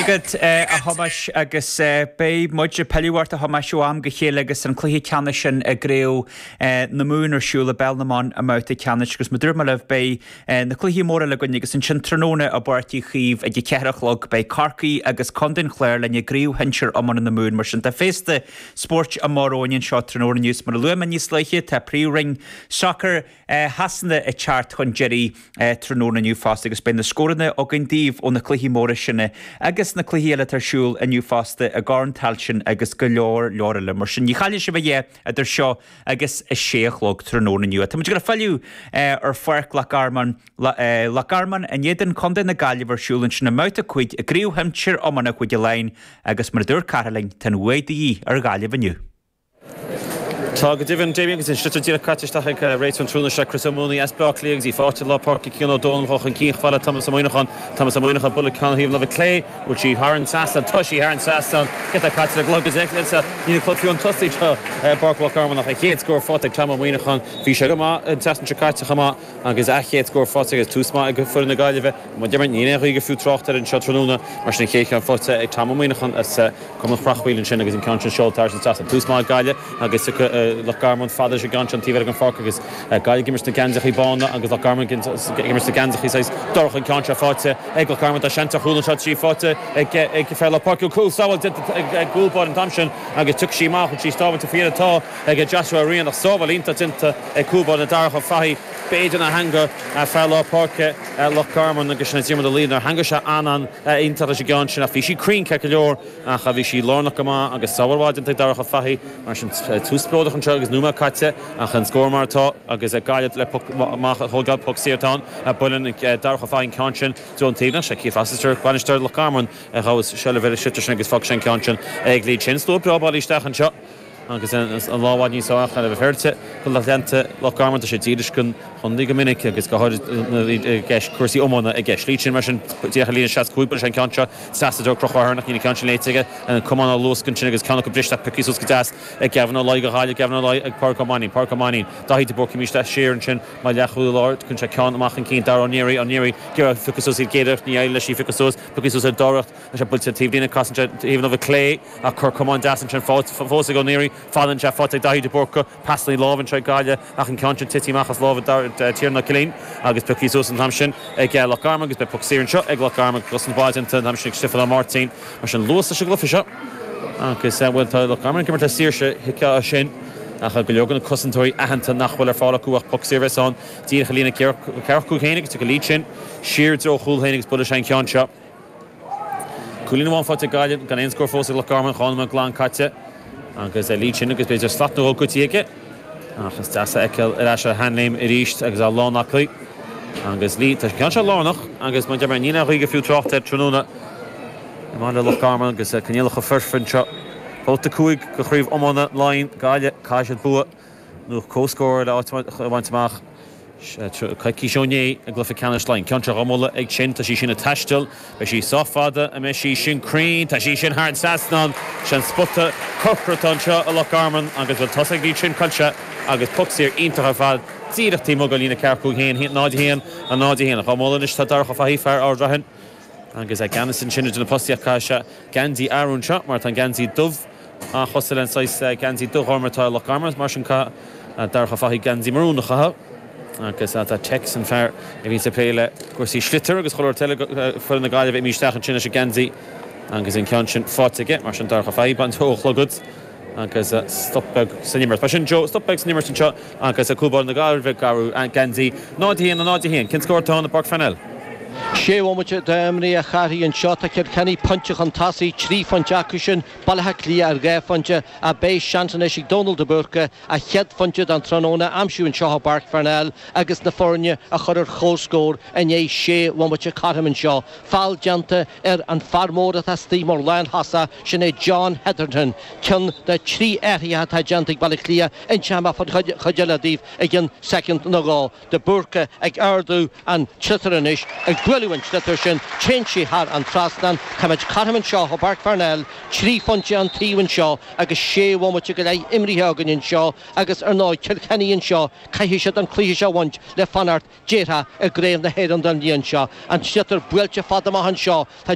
agat, a Thomáis, agus beidh muid ag pilleadh ort, a Thomáis, ó am go chéile agus an cluiche ceannais sin i gCraobh na Mumhan ar siúl i bpeil na mban i mbabhta ceannais agus mar a dúirt mé libh, beidh na cluichí móra againn agus ansin tráthnóna i bPáirc Uí Chaoimh ag a ceathair a chlog, beidh Corcaigh agus Contae an Chláir linn i gCraobh Shinsir Iomána na Mumhan. Mar sin, tá féasta spóirt amach romhainn anseo tráthnóna. Mar a luaigh mé níos luaithe, tá príomhroinn sacair, Shasana ag teacht chun deiridh tráthnóna inniu fosta agus beidh na scóranna againn daoibh ó na cluichí móra sin agus na cluichí eile atá ar siúl inniu fosta i gCorn Tailteann agus go leor leor eile. Mar sin, ní chaillfidh sibh a dhath idir seo agus a sé a chlog tráthnóna inniu. Táimid ag filleadh ar Pháirc Loch Garman, Loch Garman in éadan Chontae na Gaillimhe ar siúl ansin i mbabhta 5 i gCraobh Shinsir Iomána Chúige Laighean agus mar a dúirt Cárthach linn, tá an bhuaidh de dhíth ar Ghaillimh inniu. Tá go deimhin, Damien, agus an sliotar díreach caite isteach ag réiteoir an tráthnóna seo, Chris Ó Maonaigh as Bleá Cliath, agus í faighte i lár páirce ag Cian Ó Dónaill chun cinn chomh fada le Tomás Ó Muíneacháin. Tomás Ó Muíneacháin, buaileann ceann thaobh na láimhe clé, an bhfuil sí thar an trasnán, tá sí thar an trasnán, giota caite ina glog, agus ansin níl an clog fiú tosaithe i bPáirc Loch Garman ach an chéad scór faighte ag Tom Ó Muíneacháin. Bhí sé go maith an tseachtain seo caite chomh maith. Agus an chéad scór faighte agus tús maith ag foireann na Gaillimhe i mbun Dermot, níl aon ghaoth gur fiú trácht air anseo tráthnóna. Mar sin an chéad cheann faighte ag Tom Ó Muíneacháin as Cumann Chreachmhaoil ansin agus an ceann sin seolta thar an trasnán. Tús maith ag Gaillimh agus Loch Garman fada leis an gceann sin taobh amuigh den pháirc agus Gaillimh ag imirt sna geansachaí bána agus Loch Garman ag imirt sna geansachaí saghas dorcha. An ceann seo faighte ag Loch Garman. Tá seans ar chúl anseo, tá sí faighte ag fear lár páirce. Cúl sábháilte ag an gcúl báire an t-am sin agus tiocfaidh sí amach tá sí sábháilte faoi dheireadh. Tá. ag Joshua Ó Riain ach sábháil iontach déanta ag cúl báire Darach Ó Fathaigh. B'fhéidir nár theangaigh fear lár páirce Loch Garman agus Diarmuid Ó Laoire nár theangaigh sé an-an-iontach leis an gceann sin ach bhí sí cruinn ceart go leor ach bhí sí lárnach go maith agus sábháil mhaith déanta ag Darach Ó Fathaigh. Mar sin, tús spleodrach anseo agus nóiméad caite ach an scór mar atá agus Gaillimh le poc amach a thógáil, poc saor ann. Buaileann Darach Ó Fathaigh an ceann sin den taobhlíne ach sé Keith Rossiter, bainisteoir Loch Garman, a ghabhas seilbh ar an sliotar sin agus fágfaidh sé an ceann sin ag Lee Chin. Slua breá bailithe isteach anseo. agus an lá i bhfad níos áille a bheith féaráilte do lucht leanta Loch Garman. Tá siad dílis don chontae go minic agus go háirid cúrsaí iomána i gceist. Lee Chin mar sin díreach ar líne 65 buaileann sé an gceann seo. Seasadh deor crochadh thar na cinn an ceann sin léite aige. Na camáin á luascadh ansin agus ceann acu briste ach piocthaí suas go deas ag Gavin Ó Laoi go háirid. Gavin Ó Laoi ag Pádraic Ó Mainín. Pádraic Ó Mainín. Daithí de Búrca ag imirt siar ansin mar leath chúl láir. Tugann sé ceann amach chun cinn. Dara Ó Nearaí. Ó Nearaí ag iarraidh í a phiocadh suas, ag iarraidh. Níor éirigh leis í phiocadh suas. Piocthaí suas ar an dara. Tá sé buailte taobh líne, casann sé taobh na láimhe clé ach cor camáin deas ansin fós ag Ó Naoirí. An ceann seo faighte ag Daithí de Búrca, pasanna láimhe anseo ag Gaillimh ach an ceann sin tite amach as lámha Tiarnán Ó Cillín agus pioctha suas an t-am sin ag Loch Garman agus beidh poc saor anseo ag Loch Garman agus an obair déanta an t-am sin ag Stiofán Ó Máirtín. Mar sin luas leis an gcluiche seo agus bhuel tá Loch Garman ag imirt le saoirse, thuigfeá é sin ach go leor de na cosantóirí aitheanta nach bhfuil ar fáil acu ach poc saor a bheas ann díreach ar a líne ceathracha cúig féin agus tiocfaidh Lee Chin siar i dtreo chúl féin agus buailfidh sé an ceann seo. Cúilín amháin faighte ag Gaillimh, gan aon scór fós ag Loch Garman, dhá nóiméad glan caite agus Lee Chin agus b'fhéidir slat nó dhó goidte aige. Ach is deas é a fheiceáil ar ais ar a sheanléim arís agus é lán aclaí. Agus Lee, tá an ceann seo lárnach agus mar a deir mé, níl aon ghaoth gur fiú trácht air tráthnóna i mBaile Loch Garman agus coinníollacha foirfe anseo. Babhta 5 de chraobh iomána Laighean, Gaillimh, caithfidh siad bua. nó comhscór le áit a bhaint amach. Coicís ó inné i gcluiche ceannais Laighean. Ceann atá dhá bhualadh ag Chin. Tá sí sin ag taisteal. Beidh sí sách fada an mbeidh sí sin cruinn. Tá sí sin thar an trasnán. Sin spota corcra atá anseo i Loch Garman agus bhuel tá's ag Chin Cuilche agus poc saor iontach ar fad díreach taobh amuigh den líne ceathracha cúig féin. 0-1 an 0-1. Dhá bhualadh anois tá Darach Ó Fathaigh, fear Ard Raithin, Agus é i gceannas ansin idir na postaí ach caithfidh sé geansaí a athrú anseo mar tá an geansaí dubh an-chosúil leis an saghas geansaí dubh-ghorm atá ag Loch Garman mar sin caithfidh Darach Ó Fathaigh geansaí marún a chaitheamh. Agus tá Tex an fear a bhíonns ag plé le cúrsaí sliotar agus chuile rud eile do fhoireann na Gaillimhe imithe isteach ansin leis an geansaí agus an ceann sin faighte aige mar sin Darach Ó Fathaigh ag baint dó a chlogad agus stop beag san imirt. Mar sin, Joe, stop beag san imirt anseo agus Cúl Báire na Gaillimhe ag athrú geansaí, 0-1 in 0-1. Cén scór atá ann i bPáirc Pharnell? Sé bhomaite imrithe a Chárthaigh anseo. Tá Cill Chainnigh pointe chun tosaigh, trí phointe acu sin, Baile Átha Cliath ar dhá phointe, ach beidh seans anois ag Dónal de Búrca a chéad phointe don tráthnóna a aimsiú anseo i bPáirc Pharnell agus na foirne a chur ar chomhscór i ndiaidh sé bhomaite cothrom anseo. foul déanta ar an fear mór atá istigh mar lántosaí, sin é John Hetherton. Ceann de thrí athruithe atá déanta ag Baile Átha Cliath inseoidh mé faoin chuid eile daoibh i gceann soicind nó dhó. De Búrca ag ardú an tsliotair anois, ag bualadh an tsliotair sin téann sí thar an trasnán, táimid cothrom anseo i bPáirc Pharnell, trí phointe an taobh anseo agus sé bhomaite go leith imrithe againn anseo agus ar ndóigh Cill Chainnigh anseo, caithfidh siad an cluiche seo a bhaint le fanacht. Déarfá i gcraobh na hÉireann don bhliain seo, an sliotar buailte fad amach anseo, tá